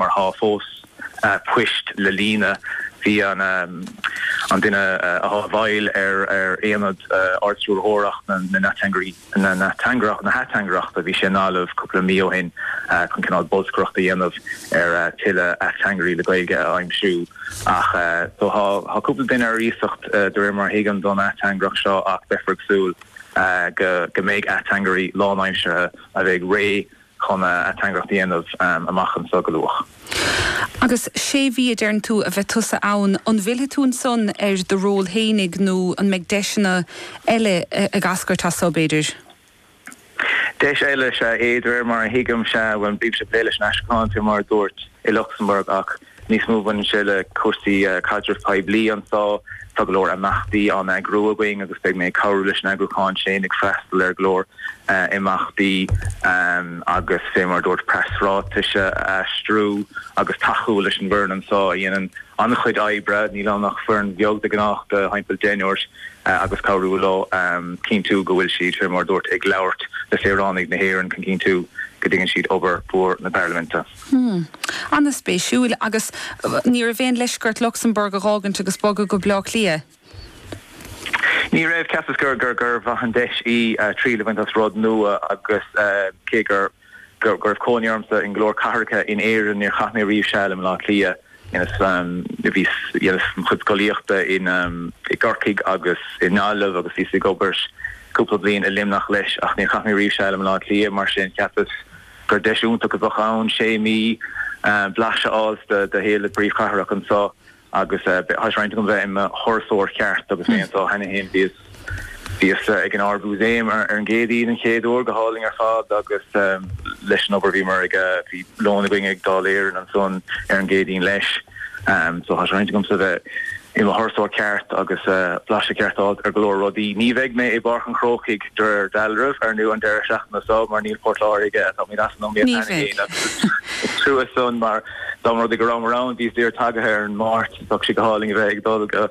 mar tá fós poist le líonadh. Bhí an an duine atá i bhfeighil ar ar aonad Ard-Stiúrthóireacht na na nAteangairí na nAteangaireacht na hAteangaireachta, bhí sé i nGaillimh cúpla mí ó shin chun cineál bolscaireachta a dhéanamh ar thuilleadh ateangairí le Gaeilge a aimsiú ach so tá tá cúpla duine ar iasacht de réir mar a thuigim don ateangaireacht seo ach beifear ag súil go go mbeidh ateangairí lánaimseartha a bheidh réidh chun ateangaireacht a dhéanamh amach anseo go luath. Agus sé mhí a deireann tú a bheith tusa ann, an bhfillfidh tú ansan ar do ról fhéinig nó an mbeidh deiseanna eile ag eascairt as seo, b'fhéidir? Deis eile is ea é, de réir mar a thuigimse, bhuel, bímse ag plé leis an aistriúchán, fé mar a dúirt, i Lucsamburg ach níos mó. Baineann sé le cúrsaí caidreamh poiblí anseo. Tá go leor imeachtaí á n-eagrú againn agus beidh mé ag cabhrú leis an eagrúchán sin, ag freastal ar go leor imeachtaí agus fé mar a dúirt, preasráitis a aistriú agus tacú leis an bhfoireann anseo a dhéanann an-chuid oibre, níl ann ach foireann bheag de ghnáth de thimpeall deichniúr, agus cabhrú leo cinntiú go bhfuil siad, fé mar a dúirt, ag labhairt le saoránaigh na hÉireann chun cinntiú go dtuigeann siad obair mhór na Parlaiminte. Hmm. Ana-spéisiúil. Agus ní raibh aon leisce ort Lucsamburg a dh'fhágaint agus bogadh go Baile Átha Cliath? Ní raibh. Cheapas gur mhaith an deis í triail a bhaint as rud nua agus cé go raibh cónaí ormsa i go leor cathracha in Éirinn, níor chaith mé riamh seal i mBaile Átha Cliath. Dheineas mo chuid scolaíochta i gCorcaigh agus i nGaillimh agus bhíos ag obair cúpla bliain i Luimneach leis ach níor chaith mé riamh seal i mBaile Átha Cliath, mar sin cheapas gur deis iontach a bheadh ann sé mhí blaiseadh a fháil de shaol na príomhchathrach anseo agus tá sé i rún agam bheith i mo thurasóir ceart agus mé anseo cheana fhéin. Bhíos ag an Ard-Mhúsaem ar an gCéadaoin an chéad uair, go hálainn ar fad agus leis an obair bhíomar ag, bhí lón againn ag Dáil Éireann ansan ar an gCéadaoin leis. so tá sé i rún agamsa bheith i mo thurasóir ceart agus blaiseadh ceart a fháilt ar go leor rudaí. Ní bheidh mé i bPáirc an Chrócaigh de réir dealraimh ar ndóigh an deireadh seachtaine so mar níl Port Láirge, táimid as an iomaíocht cheana féin agus is trua san mar dá mba rud é go rabhamar ann, bhíos díreach tagaithe ar an Máirt, bheadh sé go hálainn a bheith ag dul go.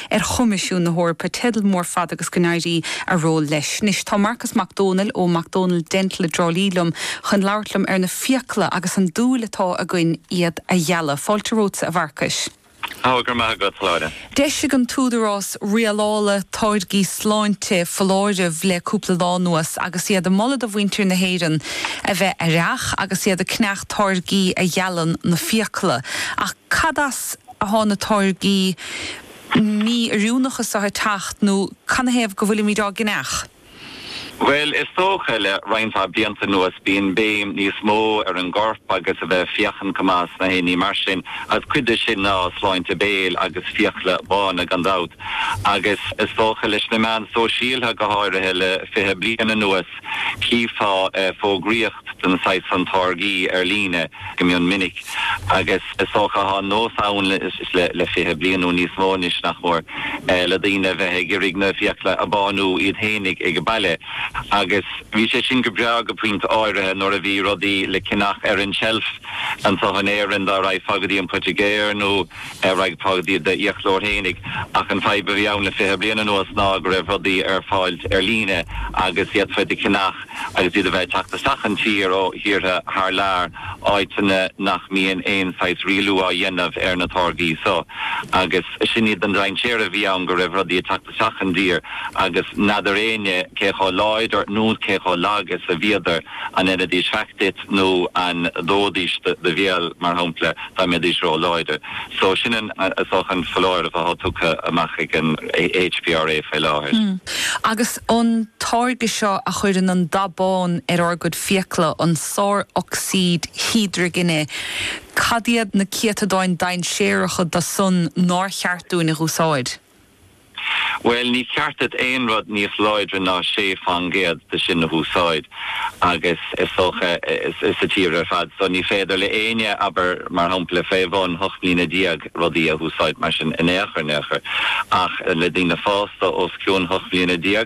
ar Choimisiún na hEorpa, teideal mór fada agus go n-éirí a ról leis. Anois, tá Marcas Mac Dónaill ó Mac Dónaill Dental i dTrá Lí liom chun labhairt liom ar na fiacla agus an dúil atá againn iad a ghealadh. Fáilte romhatsa, a Mharcais. Ó, go raibh maith agat, Lára. D'eisigh an tÚdarás Rialála Táirgí Sláinte foláireamh le cúpla lá anuas agus iad ag moladh do mhuintir na hÉireann a bheith aireach agus iad ag ceannach táirgí a ghealann na fiacla. Ach cad as. athá na táirgí mí-oiriúnacha so a' teacht nó canathaobh go bhfuilimid á gceannach? Bhuel, is dócha, le roinnt mhaith blianta anuas, bíonn béim níos mó ar an gcorp agus a bheith ag féachaint go maith is na haon ní. Mar sin, agus cuid de sin ná sláinte béil agus fiacla bána, gan dabht, agus is dócha leis na meáin sóisialtha, go háirithe le fiche bliain anuas, Chífeá fógraíocht den saghas san táirgí ar líne go mion minic agus is dócha go bhfuil an nós ann le fiche bliain nó níos mó anois, nach mór, le daoine a bheith ag iarraidh na fiacla a bhánú iad fhéinig ag an baile. Agus bhí sé sin go breá go pointe áirithe nuair a bhí rudaí le ceannach ar an tseilf anseo in Éirinn dá raghfá go dtí an poitigéir nó, dá raghfá go dtí d'fhiaclóir fhéinig, ach an fadhb a bhí ann le fiche bliain anuas ná go raibh rudaí ar fáil ar líne agus d'fhéadfá iad a cheannach agus iad a bheith ag teacht isteach sa tír ó thíortha thar lear, áiteanna nach mbíonn aon saghas rialú á dhéanamh ar na táirgí so. Agus sin iad na dainséaraí a bhí ann, go raibh rudaí ag teacht. isteach sa tír, agus n'fheadar éinne cé chomh láidir nó cé chomh lag is a bhíodar, an ndeinidís faic duit nó an ndóidís do bhéal, mar shampla, dá mbeidís ró-láidir. So, sin an an foláireamh atá tugtha amach ag an HPRA faoi láthair. Agus an táirge seo a chuireann an dath bán ar ár gcuid fiacla, an sárocsaíd hídrigine, cad iad na céatadáin dainséaracha do san nár cheart dúinn a úsáid? Bhuel, ní ceart duit aon rud níos láidre ná sé fán gcéad de sin a húsáid, agus is dócha, sa tír ar fad so, ní féidir le éinne, abair, mar shampla, fé bhun hocht mbliana déag, rudaí a húsáid mar sin in aon chor, in aon chor, ach le daoine fásta os cionn hocht mbliana déag,